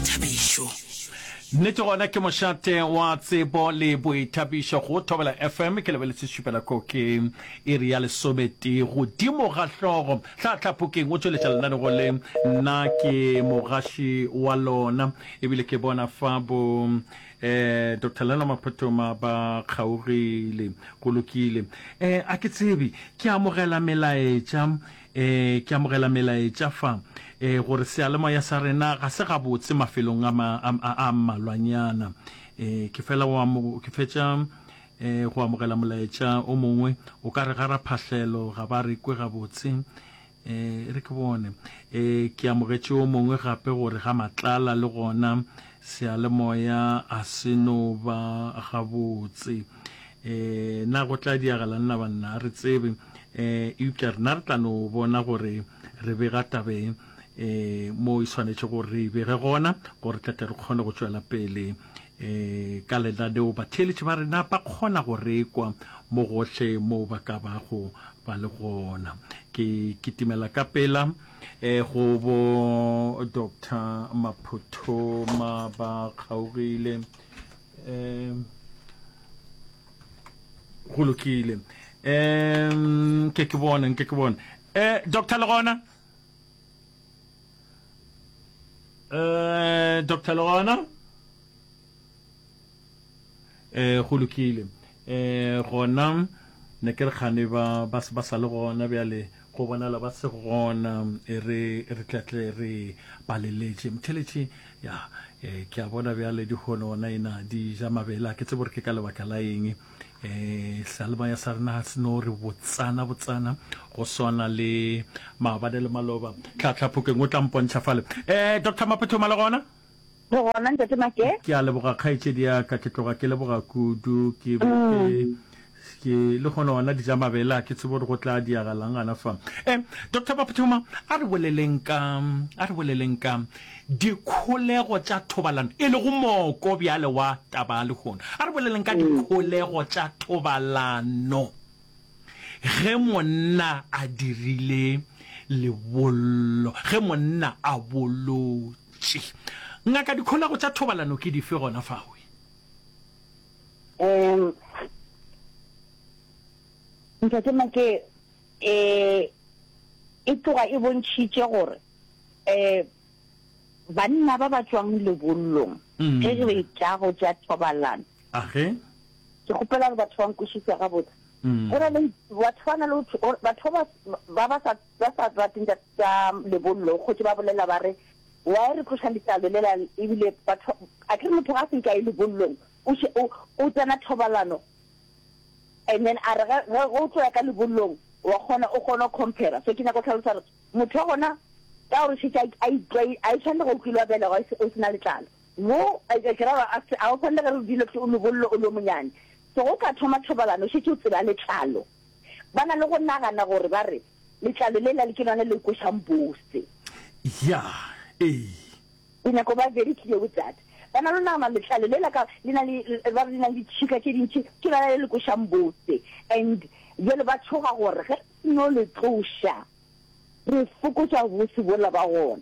Thabišo. Nnete gona ke mošate wa tsebo le boithabišo go Thobela FM. Ke lebeletse šupela ko ke iri ya lesometee godimo ga hlogo. Tlhatlha Phokeng o tšweletša lenanego le. Nna ke mogaši wa lona ebile ke bona fa bo eh Dr Leno Maphothoma ba kgaogile go lokile eh a ke tsebe ke amogela melaetša Ee, ke amogela melaetša fa ee, gore seyalemoya sa rena ga se gabotse mafelong a, ma, a, a, a mmalwanyana. Ee, ke fela o amo, ke fetša ee, go amogela molaetša o mongwe. O ka re ga raphahlelo ga ba re kwe gabotse. Ee, e re ke bone. Ee, ke amogetše o mongwe gape gore ga matlala le gona seyalemoya a se no ba gabotse. um na go tla diagalang na banna a re tsebe um eupša rena re tla no bona gore re bega tabeng um mo e swanetše gore re e bege gona gore tle tle re kgone go tšwela pele um ka lenaneo batheeletši ba rena ba kgona go rekwa mo gohle moo ba ka bago ba le gona ke kitimela ka pela um go bo doctor maphotho ma ba kgaogile um go lokile um ke ke bone nke ke bone um doctor le gona um doctor le gona um go lokile um gona ne ke re kgane ba sa le gona bjale Go bonala ba se gona, e re re tla tle re ba leletše. Mtheletše, Ya, e, ke a bona bjale dihono gona ena di ja mabele, a ke tsebe gore ke ka lebaka la eng. E, sealemaya sa rena ga se no re botsana botsana go swana le maabane le maloba. Tlhatlhaphokeng o tla mpontšha fale. E, Doctor Maphothoma le gona? Re gona ntate Make? Ke a leboga kgaetšedi ya ka, ke tloga ke leboga kudu, ke be ke ke le gona ona dija mabele a ke tsebe gore go tla diagalang gana fa. Eh, Doctor Baphuthuma, a re boleleng ka, a re boleleng ka dikholego tša thobalano, e lego moko bjale wa taba ya lehono. A re boleleng ka dikholego tša thobalano ge monna a dirile lebollo, ge monna a bolotše. Tši. Ngaka, dikholego tša thobalano ke dife gona fao? Um, Ntate Make, e, e tloga e bontšhitše gore um banna ba ba tšwang lebollong Mm. ge re tla go tša thobalano, Age. ke kgopela gore batho ba nkwešiša gabotse. Mm. Go na le batho ba na le ho tho- batho ba ba ba sa Ba sa rate tša tša lebollo go tše ba bolela ba re why re tloša letlalo lela ebile batho a ke re motho ga se nka e lebollong o še o o tsena thobalano and then a re ge o tlo ya ka lebollong wa kgona o kgona compare so ke nyaka go tlhalosa re motho wa gona ka gore šetša a itlwa a itshwane le go kilwa bela go o sena letlalo mo a ke ra ba a o tshwane le ge re dilo o lebollo o lo monyane so go ka thoma thobalano šetše o tseba letlalo Ba na le go nagana gore ba re, Letlalo lela le ke lona le kwešang bose. Ya, ee. Ke nyaka go ba very clear with that. Ba na le go nagana letlalo lela ka, le na le, ba re le na le ditšhika tše dintši, ke lona le le kwešang bose. And bjale ba tšhoga gore ge re no le tloša, re fokotša bose bola ba gona.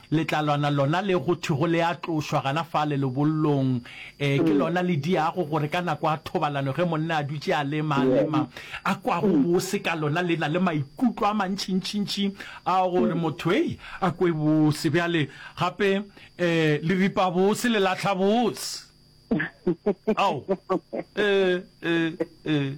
Letlalwana lona le go thwego le a tlošwa gana fale lebollong, ee, ke lona le diago gore ka nako ya thobalano ge monna a dutše a lema, a lema, a kwa gobose ka lona. Le na le maikutlo a mantšintšintši a gore motho, hei, a kwe bose. Bjale, gape, ee, le ripa bose, le lahla bose. Ao. Ee, ee, ee.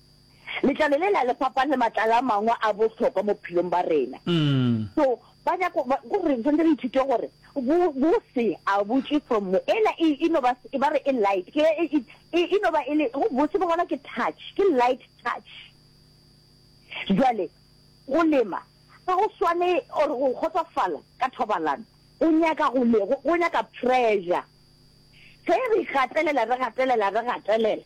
Letlalo le la le fapane le matlalo a mangwe a bohlokwa mo bophelong ba rena. So ba nyako ba go re sentse re ithute gore bo bo se a butše from mo ela e e no ba e ba re e light ke e e e e no ba e le go botse bo gona ke touch ke light touch. Jwale go lema ga go swane or go kgotsofala ka thobalano go nyaka go le go nyaka pressure ge re gatelela re gatelela re gatelela.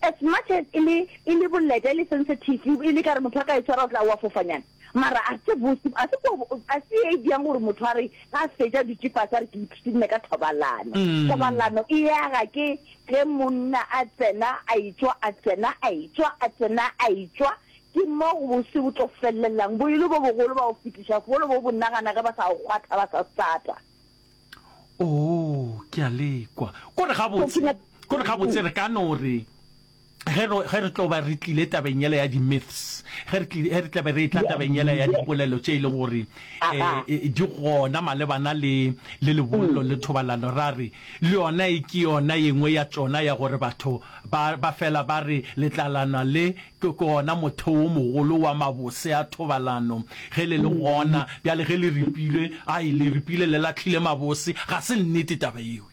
As much as e le, e le boleta, e le sensitive, e le kare motho a ka e tshwara o tla wa fofanyana, mara a se bose, a se ko, a se e bjang gore motho a re ga a fetša dutše fase a re ke ipshinne ka thobalano. Thobalano e aga ke ge monna a tsena a etšwa, a tsena a etšwa, a tsena a etšwa, ke mo go bose bo tlo fellelang, bo e le bo bogolo ba go fetiša, bogolo bo bo nagana ge ba sa go kgwatha ba sa stata. Oo, ke a le kwa. Kore gabotse, kore gabotse re ka no re, ge re, ge re tlo ba re tlile tabeng yela ya di-myths, ge re tlile, ge re tlabe re etla tabeng yela ya dipolelo tše e leng gore eh, di gona malebana le, le lebollo le thobalano, ra re le yona e ke yona ye nngwe ya tšona ya gore batho ba, ba fela ba re letlalana le Ke gona motheo wo mogolo wa mabose a thobalano. Ge le le gona bjale, ge le ripilwe, ai, le ripilwe le lahlile mabose. Ga se nnete taba yeo.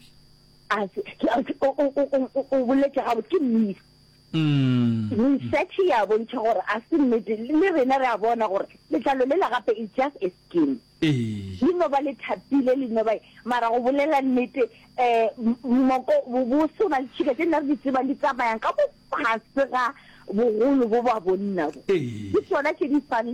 Ase, ke, ase, o, o, o, o, o boletše gabotse. Ke nnete. Research e a bontšha gore a se nnete. Le rena re a bona gore letlalo lela gape is just a skin. Ee. Le no ba le thapile, le no ba eng. Mara go bolela nnete, um moko, bosona, litšhika tše nna re di tsebang di tsamayang ka bofase ga bogolo bo ba bonna bo. Ee. Ke tšona tše di fang le.